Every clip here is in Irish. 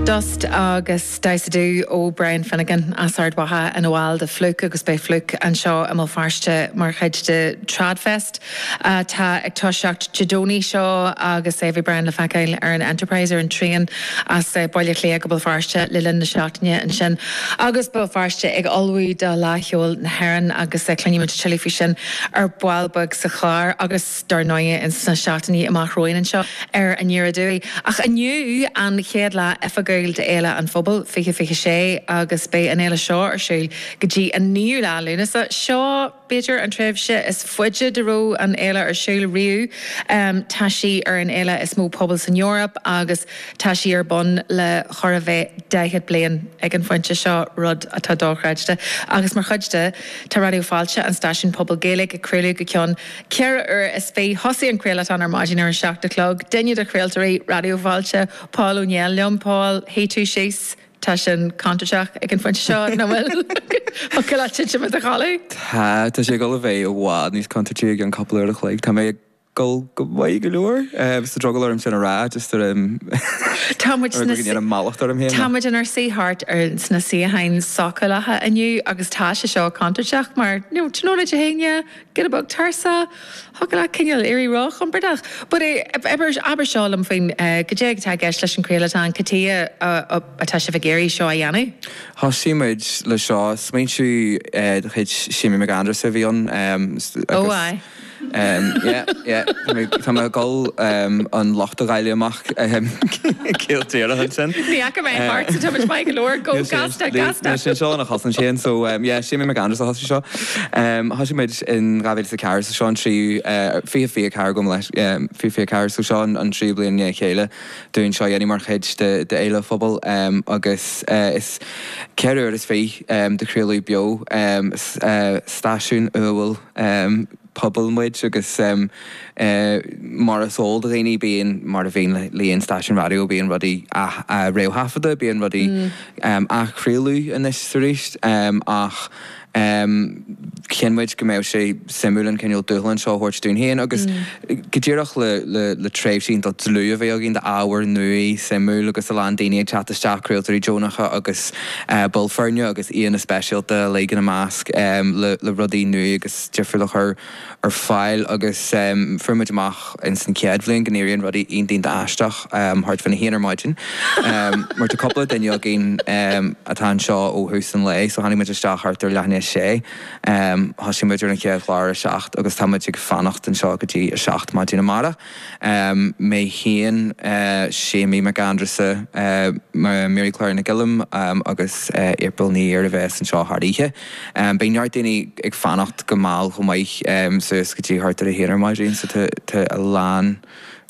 Dust agus Dusa, dú ó Brian Finnegan as Ard Mhacha ina bhall de Flook agus beidh Flook anseo i mBéal Feirste mar chuid de Tradfest atá ag toiseacht Dé Domhnaigh seo agus beidh Brian le feiceáil ar an Enterprise ar an traein as Baile Átha Cliath go Béal Feirste le linn na seachtaine ansin agus Béal Feirste ag ullmhú do Fhleadh Cheoil na hÉireann agus cluinimid tuilleadh faoi sin ar ball beag sa chlár agus. dár ndóigh, ins na seachtainí amach romhainn anseo, ar ndóigh. Ach inniu an chéad lá oifigiúil d'Fhéile an Phobail 2026 agus beidh an fhéile seo ar siúl go dtí an 9ú lá Lúnasa. Seo, b'fhéidir, an tréimhse is faide dá raibh an fhéile ar siúl riamh. Tá sí ar an fhéile is mó pobail san Eoraip agus tá sí ar bun le chóir a bheith 40 bliain ag an phointe seo, rud atá dochreidte. Agus mar chuid de, tá Raidió Fáilte, an stáisiún pobail Gaeilge, ag craoladh go ceann. Ceithre uair is fiche. Thosaigh an craolatón ar maidin ar an seacht a chlog. Duine de chraoltóirí Raidió Fáilte, Paul Ó Néill, liom. Paul, shuigh tú síos. Tá sin contúirteach ag an phointe seo, nach bhfuil? Thiocfadh leat titim i do chodladh? Tá, tá sé ag dul a bheith i bhfad níos contúirtí i gceann cúpla uair a chloig. Tá mé ag dul go maith go leor. Bhí drogall orm sin a rá, just ar an Tá muid sna ar an mallacht orm féin. Tá muid inár suí thart ar sna suíocháin sócúlacha inniu agus tá sé seo contúirteach mar, you know, do you know, leid a haon, yeah? Get a book, Tirsa. Thiocfadh leat cineál éirí róchompordach. But eh, abair seo liom faoin eh, cad é atá i gceist leis an chraolatón, cad chuige atá sibh ag iarraidh seo a dhéanamh? Thosaigh muid le seo, smaointiú eh, de chuid Séimí Mac Aindreasa a bhí ann em, Oh agus aye. em, yeah, yeah, tá mé, tá mé ag dul em, an locht a dháileadh amach em, ciall díreach ansin. Ní fhaca mé Eh, thart sa tomhais maith go leor, go, níl sé, gasta, níl, gasta. níl sé seo ina chosaint sin, so em, yeah, Séimí Mac Aindreasa a thosaigh seo. Thosaigh muid in 2004 so seo an tríú, fiche fiche a ceathair gabh mo leithscéal, fiche fiche a ceathair so seo an tríú bliain i ndiaidh a chéile dúinn seo a dhéanamh mar chuid de Fhéile an Phobail agus is ceithre uair is fiche de chraoladh beo stáisiún uathúil pobail muid agus mar is eol do dhaoine bíonn, mar a bhíonn le aon stáisiún raidió, bíonn rudaí á réamhthaifeadadh, bíonn rudaí á n-athchraoladh anois is arís ach chinn muid go mbeadh sé suimiúil an cineál dúshlán seo a thabhairt dúinn féin agus go díreach le tréimhse iontach dlúth a bheith againn d'ábhar nua, suimiúil agus a lán daoine ag teacht isteach, craoltóirí deonacha agus baill foirne agus aíonna speisialta uilig ina measc le rudaí nua agus. difriúla a chur ar fáil agus fuair muid amach in san chéad bhliain go n-éiríonn rudaí iontach iontach aisteach thart faoin a haon ar maidin mar tá cúpla duine againn atá anseo ó thús an lae so tháinig muid isteach thart ar leath i ndiaidh a sé. Thosaigh muid ar an chéad chlár a seacht agus tá muid ag fanacht anseo go dtí a seacht maidin amárach. mé féin, Séimí Mac Aindreasa, Mary Clár Nic Guilm agus April Ní Ír a bheas anseo thar oíche. Beidh neart daoine ag fanacht go mall chomh maith, suas go dtí thart ar a haon ar maidin, so tá a lán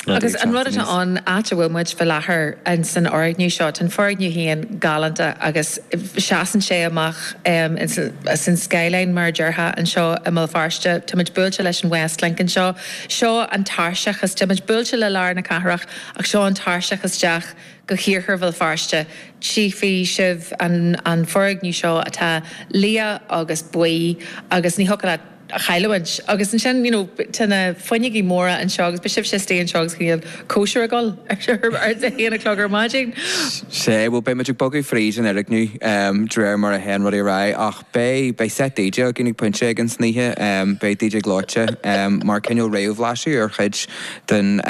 rudaí ag teacht aníos. Agus an rud atá ann, áit a bhfuil muid faoi láthair san fhoirgneamh seo, tá an foirgneamh féin galánta agus seasann sé amach as an skyline mar a déarfá anseo i mBéal Feirste, táimid buailte leis an Westlink anseo, Seo an tairseach is, táimid buailte le lár na cathrach, ach seo an tairseach isteach go hIarthar Bhéal Feirste. Tchífidh sibh an foirgneamh seo atá liath agus buí agus ní thiocfadh leat a chailliúint. Agus ansin, you know, tá na fuinneogaí móra anseo agus beidh sibhse istigh anseo agus ag déanamh cóisir ag gabháil ar a haon a chlog ar maidin. Sea, bhuel, beidh muid ag bogadh fríd an fhoirgneamh de réir mar a théann rudaí ar aghaidh, ach. Beidh, beidh seit DJ againn ag pointe éigin san oíche. Beidh DJ Gleoite, mar cineál réamhbhlaiseadh ar chuid den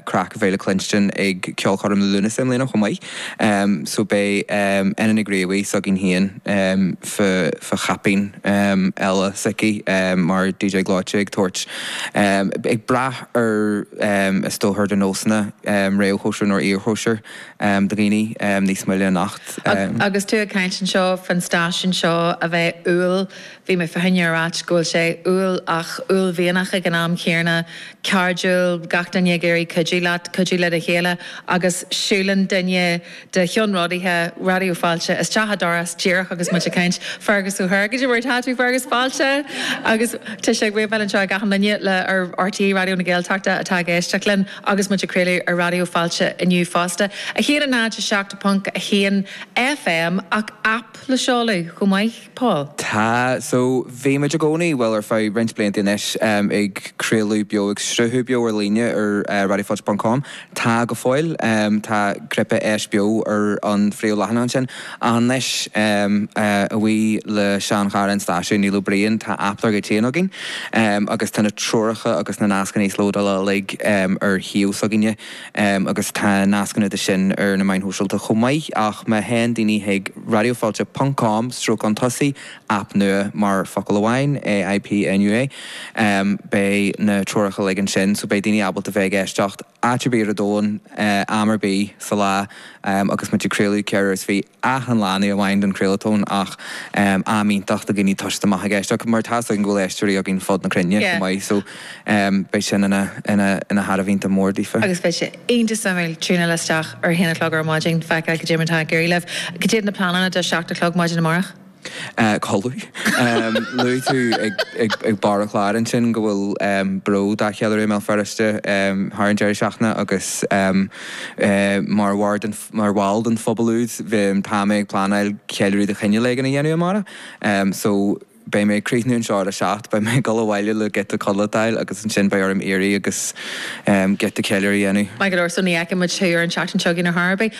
craic a bheas le cluinstin ag ceolchoirm Liú Lúnasa i mbliana chomh maith. So beidh Edel Nig Riabhaigh s'againn féin fá, fá chaipín eile s'aici mar DJ Gleoite ag tabhairt, ag brath ar is dócha ar do nósanna, réamhchóisir nó iarchóisir. do dhaoine níos moille anocht. Agus tú ag caint anseo fán stáisiún seo a bheith umhal, bhí mé fá choinne a ráit go bhfuil sé umhal ach uaillmhianach ag an am chéarna, cairdiúil, gach duine ag iarraidh cuidiú leat, cuidiú le do chéile, agus siúlann duine de cheannródaithe Raidió Fáilte isteach an doras díreach agus muid ag caint, Fergus Ó hÍr, cad é mar atá tú Fergus, Fáilte! Agus tá sé ag wave-áil anseo ag achan duine ar RTÉ Raidió na Gaeltachta atá ag éisteacht linn. Agus muid ag craoladh ar Raidió Fáilte inniu fosta, 107.1 FM, ach aip le seoladh chomh maith, Paul? Tá, so bhí muid i gcónaí, bhuel ar feadh roinnt blianta anois, ag craoladh beo, ag sruthú beo ar líne ar raidiofáilte ponc com, tá go fóill, tá cnaipe Éist Beo ar an phríomhleathanach ansin. Anois, a bhuí le seanchara an stáisiúin, Neil Ó Briain, tá aip dár gcuid féin againn, agus tá na treoracha agus na nascanna íoslódála uilig ar shuíomh s'againne, agus tá nascanna de sin ar na meáin shóisialta chomh maith, ach má théann daoine chuig radiofailte ponc com stríocán tosaigh aip nua, mar focal amháin, AIP NUA, beidh na treoracha uilig ansin, so beidh daoine ábalta bheith ag éisteacht. áit ar bith ar an domhan, am ar bith sa lá agus muid ag craoladh ceithre uaire is fiche achan lá, ní amháin don chraolatón ach am iontach do dhaoine toiseacht amach ag éisteacht mar tá a fhios againn go bhfuil éisteoirí againn fud na cruinne chomh maith so beidh sin ina ina ina thairbhe iontach mór daofa. Agus beidh sé iontach suimiúil tiúnáil isteach ar a haon a chlog ar maidin feiceáil cé mhéad atá ag iarraidh libh. Cad iad na pleananna do seacht a chlog maidin amárach? Codladh. Luaigh tú ag barr an chláir ansin go bhfuil Bród dá cheiliúradh i mBéal Feirste thar an deireadh seachtaine agus mar bhall den phobal úd tá mé ag pleanáil ceiliúradh de chineál éigin a dhéanamh amárach so beidh mé ag críochnú an seó ar a seacht, beidh mé ag dul abhaile le giota codlata a fháil agus ansin beidh orm éirí agus giota ceiliúrtha a dhéanamh. Maith go leor, so ní fheicfidh muid thú ar an seachtain seo chugainn ar chor ar bith.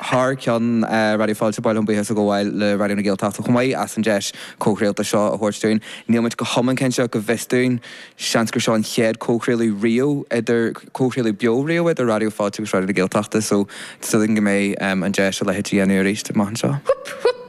thar ceann Raidió Fáilte, ba mhaith liom buíochas a ghabháil le Raidió na Gaeltachta chomh maith as an deis comhchraolta seo a thabhairt dúinn. Níl muid go hiomlán cinnte ach go bhfios dúinn, seans gur seo an chéad comhchraoladh riamh idir, comhchraoladh beo riamh idir Raidió Fáilte agus Raidió na Gaeltachta so sílim go mbeidh an deis a leithéid a dhéanamh arís amach anseo. Hup hup!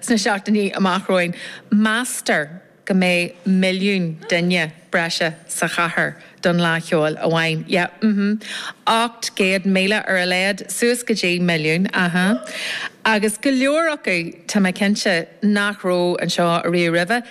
Sna seachtainí amach romhainn, meastar go mbeidh milliún duine breise sa chathair don Fhleá Cheoil amháin. Yeah, mm-hmm. 800,000 ar a laghad, suas go dtí milliún, aha. Agus go leor acu, tá mé cinnte, nach raibh anseo ariamh roimhe.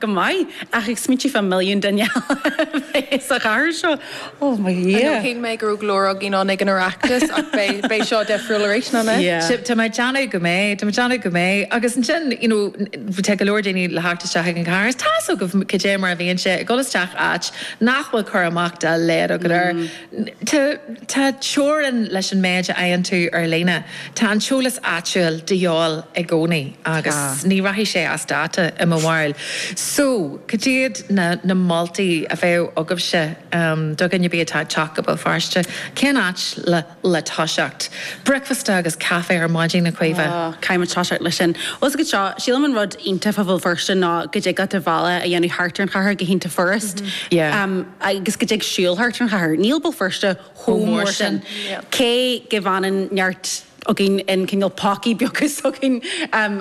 Go maith. Ach ag smaointiú fá milliún duine eile a bheith sa chathair seo, oh mo Dhia! Shíl mé go raibh go leor againn ann ag an Oireachtas ach beidh seo difriúil arís, nach mbeidh? Sea, tá mé ag déanamh go mbeidh, tá mé ag déanamh go mbeidh. Agus ansin, you know, tá go leor daoine le theacht isteach ag an chathair, is tá's agaibh cad é mar a bhíonn sé, ag dul isteach áit nach bhfuil cur amach dá laghad agat air. Tá teorainn leis an méid a fhaigheann tú ar líne. Tá an t-eolas áitiúil de dhíobháil i gcónaí agus ní rachaidh sé as dáta i mo bharúil. So, cad iad na na moltaí a bheadh agaibhse do dhuine ar bith atá ag teacht go Béal Feirste? Cén áit le le toiseacht? Bricfeasta agus caife ar maidin, a Chaoimhe? Caithfimid toiseacht leis sin. Bhuel, 's go deo, sílim an rud iontach fá Bhéal Feirste ná go dtig leat do bhealach a dhéanamh thart ar an chathair go hiontach furast. Yeah. agus go dtig siúl thart ar an chathair. Níl Béal Feirste chomh mór sin, cé go bhfanann neart againn in cineál pocaí beaga s'againn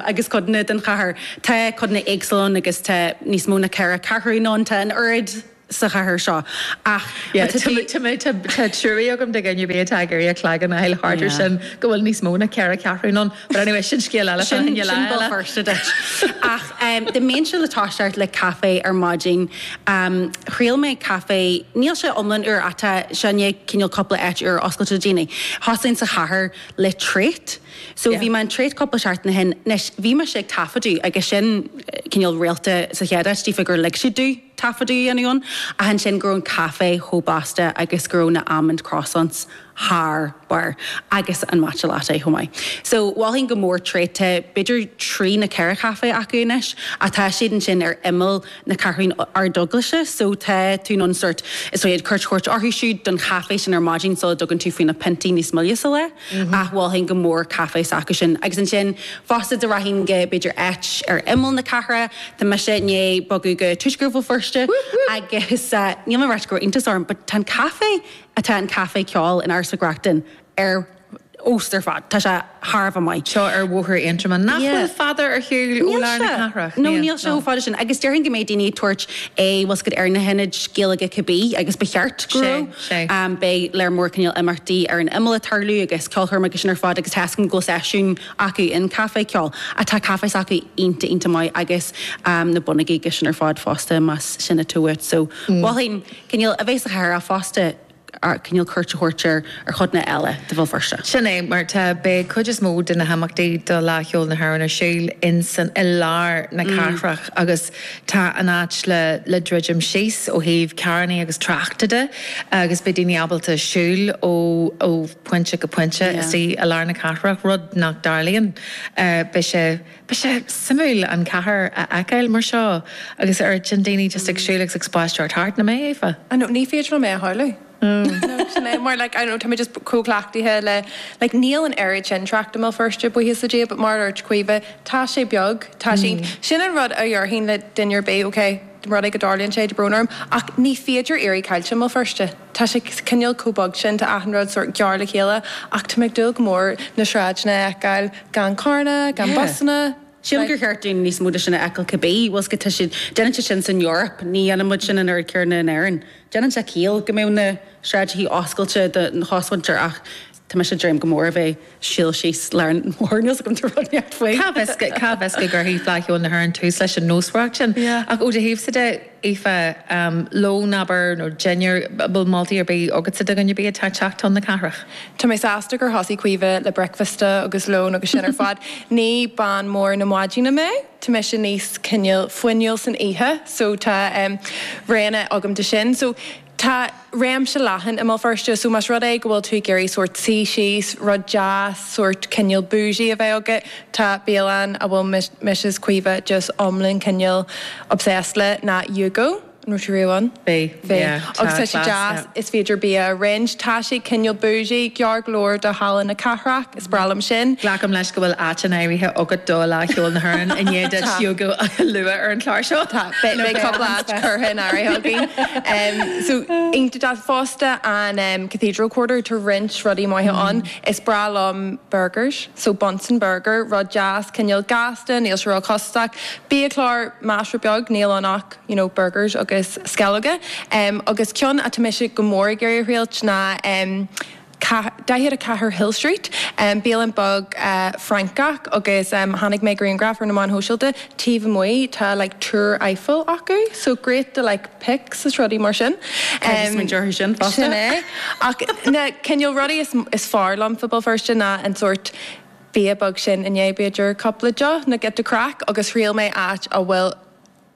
agus codanna den chathair. Tá codanna éagsúla ann agus tá níos mó ná ceithre ceathrúin ann, tá an oiread sa chathair seo ach má tá tú. Tá trua agam do dhuine ar bith atá ag iarraidh a chloigeann a fháil thart ar sin, go bhfuil níos mó ná ceithre ceathrúin ann. But anyway, sin scéal eile do Sin, lá sin Béal eile. Feirste duit. Ach em, dá mbeinnse le toiseacht le caife ar maidin, em, thriail mé caife, níl sé iomlán úr ach tá, sin é, cineál cúpla áit úr oscailte le déanaí. Thosaigh sa chathair le Trait. So bhí Yeah. mé in Trait cúpla seachtain ó shin. Anois, bhí mise ag taifeadadh agus sin eh, cineál rialta sa chéad áit, toisc gur lig siad dúinn taifeadadh a dhéanamh ann, ach ansin go raibh an caife chomh blasta agus go raibh na almond croissants thar barr agus an matcha latte chomh maith. So, mholfainn go mór Trait, tá b'fhéidir trí nó ceithre chaife acu anois ach tá siad ansin ar imeall na Ceathrún Ardeaglaise so tá tú in ann sórt b'fhéidir cuairt a thabhairt orthu siúd don chaife sin ar maidin sula dtugann tú faoi na piontaí níos moille sa lá ach mholfainn go mór caife s'acu sin. Agus ansin fosta dá rachainn go b'fhéidir áit ar imeall na cathrach, tá mise i ndiaidh bogadh go Tuaisceart Bhéal Feirste agus níl mé ag rá go raibh iontas orm but tá an caife atá an Caifé Ceoil in Áras Mhic Reachtain ar fheabhas ar fad. Tá sé thar a bheith maith. Seo ar Bhóthar Aontroma. Nach bhfuil fada ar shiúl ó lár na cathrach? Níl sé. No, níl sé chomh fada sin. Agus déarfainn go mbeidh daoine ag tabhairt, bhuel, cuairt ar na hionaid Gaeilge cibé agus ba cheart go mbeidh. Beidh lear mór cineál imeachtaí ar an imeall ag tarlú agus ceolchoirmeacha agus sin ar fad agus tá a fhios agam go bhfuil seisiún acu in Caifé Ceoil. Tá caife s'acu iontach iontach maith agus na bonnógaí agus sin ar fad fosta más sin atá uait. So mholfainn. cineál a bheith sa chathair ach fosta cineál cuairt a thabhairt ar chodanna eile de Bhéal Feirste. Sin é mar atá, beidh cuid is mó de na himeachtaí de Fhleadh Cheoil na hÉireann ar siúl ansin i lár na cathrach agus tá an áit le le druidim síos ó thaobh carrannaí agus tráchta de agus beidh daoine ábalta siúl ó ó phointe go pointe istigh i lár na cathrach, rud nach dtarlaíonn. Beidh sé. Beidh sé suimiúil an chathair a fheiceáil mar seo agus ar ndóigh daoine just ag siúl agus ag spaisteoireacht thart, nach mbeidh. I know, ní féidir liom é a shamhlú. No, sin é, mar like, I know, tá mé just chomh cleachtaithe le, like, níl an oiread sin trácht i mBéal Feirste, buíochas le Dia, but mar a dúirt Caoimhe, tá sé beag, tá sé, sin an rud a dhéarfainn le duine ar bith, ok, rud é go dtarlaíonn sé, tá brón orm, ach ní féidir éirí caillte i mBéal Feirste. Tá sé cineál chomh beag sin, tá achan rud sórt gearr le chéile, ach tá mé ag dúil go mór na sráideanna a fheiceáil gan carranna, gan busanna. Sílim gur cheart dúinn níos mó de sin a fheiceáil cibé. Bhuel, tá siad, déanann siad sin san Eoraip, ní dhéanann muid sin an oiread céanna in Éirinn. Déanann sé ciall go mbeadh na sráideanna oscailte don chosmhuintir ach. Tá mise ag dréim go mór a bheith ag siúl síos lár an bhóthair níl a fhios agam. Cá bhfios, cá bhfios go gcuirfidh Fleadh Cheoil na hÉireann tús leis an nósmhaireacht sin. Yeah. Ach ó do thaobhsa de, Aoife, lón, abair, nó dinnéar, an bhfuil moltaí ar bith agatsa do dhuine ar bith atá ag teacht chun na cathrach? Tá mé sásta gur thosaigh Caoimhe le bricfeasta agus lón agus sin ar fad. Ní bean mhór na maidine mé, tá mise níos cineál fuinniúil san oíche, so tá, em, roghanna agam de sin. So. Tá réimse leathan i mBéal Feirste so más rud é go bhfuil tú ag iarraidh sórt suí síos, rud deas, sórt cineál boujee a bheith agat, tá bialann a bhfuil mise is Caoimhe just iomlán cineál obsessed léi ná Yugo, an raibh tú riamh ann? Bhí, yeah, tá class, yeah. Agus tá sé deas, is féidir bia a roinnt, tá sé cineál boujee, gar go leor do Halla na Cathrach. breá liom sin. Glacaim leis go bhfuil áit in áirithe agat do Fhleadh Cheoil na hÉireann i ndiaidh duit Yugo a lua ar an chlár seo. Tá, beidh cúpla áit curtha in áirithe againn. So, iontach fosta an Cathedral Quarter, tá roinnt rudaí maithe ann. Is breá liom burgers, so Bunsen Burger, rud deas, cineál gasta, níl sé ró-chostasach. Biachlár, measartha beag, níl ann ach you know burgers agus sceallóga. Agus ceann atá mise go mór ag iarraidh a thriailt ná. 44 Hill Street, bialann beag Francach agus chonaic mé grianghraf ar na meáin shóisialta taobh amuigh tá like Túr Eiffel acu so great do like pics is rudaí mar sin. Caithfidh a smaointeamh orthu sin fosta. Sin é. Ach na cineál rudaí is is fearr liom faoi Béal Feirste ná an sórt bia beag sin i ndiaidh b'fhéidir cúpla deoch like the craic agus thriail mé áit a bhfuil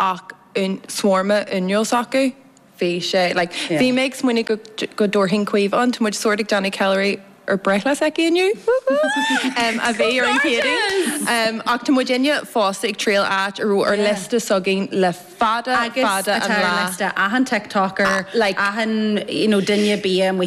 ach shawarma fhuinniúil s'acu. Bhí sé like bhí mé ag smaoineamh go dtabharfainn Caoimhe ann, tá muid sórt ag déanamh ceiliúradh ar breithlá s'aici inniu, whoop whoop, a bhí ar an Chéadaoin. Ach tá muid inniu fosta ag triail áit a raibh ar liosta s'againn le fada fada an lá. Agus atá ar liosta achan TikToker, achan you know duine bia amuigh.